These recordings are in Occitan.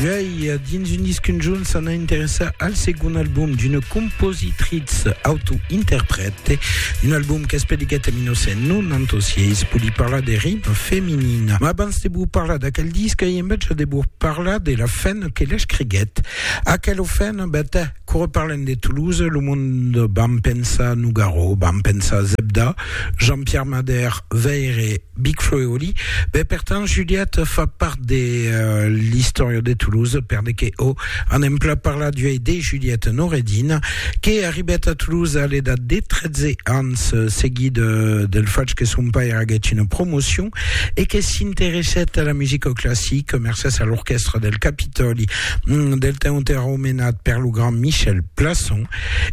Juèi, dins un disc conjunt, s'ana interessar al segon album d'una compositritz autointerprète, un album qu'es publicat en 1996, pòdi parlar de ritme feminin. Ma abans de vos parlar d'aquel disc, ai enveja de vos parlar de la fen que l'escriguèt. Aquela fen, ben, Quora parlem de Toulouse, lo mond vam pensar Nougaro, vam pensar Zebda, Jean-Pierre Madère, Veyre, Big Flo e Oli. Be, per tant, Juliette fa part de l'istòria de Toulouse, perde que o anem plan parlar d'uei de Juliette Noureddin, que arribèt a Toulouse a l'edat de 13 ans, seguit del fach que son pair aguèt una promocion e que s'interessèt a la musica classica mercés a l'orquèstra del Capitòli mm, del temps entèrò menat per lo grand Michel Plasson,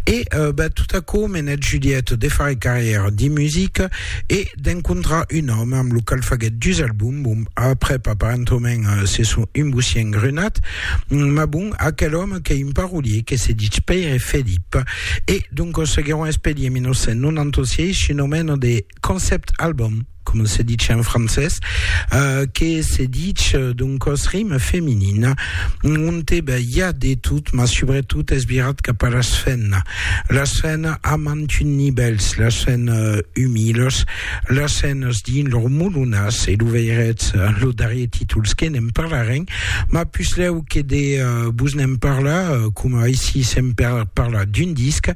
e euh, ben, tot aquò menèt Juliette de far carrièra dins musica e d'encontrar un òme amb lo qual faguèt dus albums, bon, aprèp aparentament euh, se son un bocien grunat, mm, mas bon, aquel òme qu'es un parolier que se ditz Pèire Felip, e doncas seguiròn espèri en 1996 un omèna de. concept album, com se ditz en francés, uh, que se ditz eh, d'un cos rime feminin, on te ben, hi ha de tot, ma sobretot és virat cap a les fennes. Les fennes amant un nivels, les fennes eh, humiles, les fennes dins leur moulonas, e lo veiretz eh, lo darrier títols que n'en parlarem, ma pusleu que de uh, vos n'en parlar, uh, com aici se'n parla d'un disc,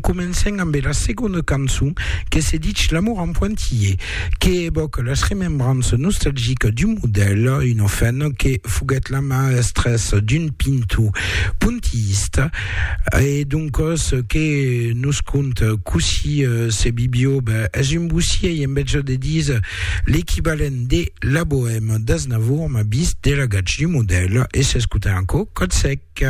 Comencem ambe la segonda cançon que se ditz L'amour en pointillés, que evoque las remembrances nostalgiques d'un modèl, una femna que foguèt la maestras d'un pintor pointillista, e doncas que nos conte cossí se vivió, ben, es un bossièi, en bètge de dire, l'equivalent de La Bohème d'Aznavour, mas vist de la gatz d'un modèl, e s'escute en aquò Còt sec.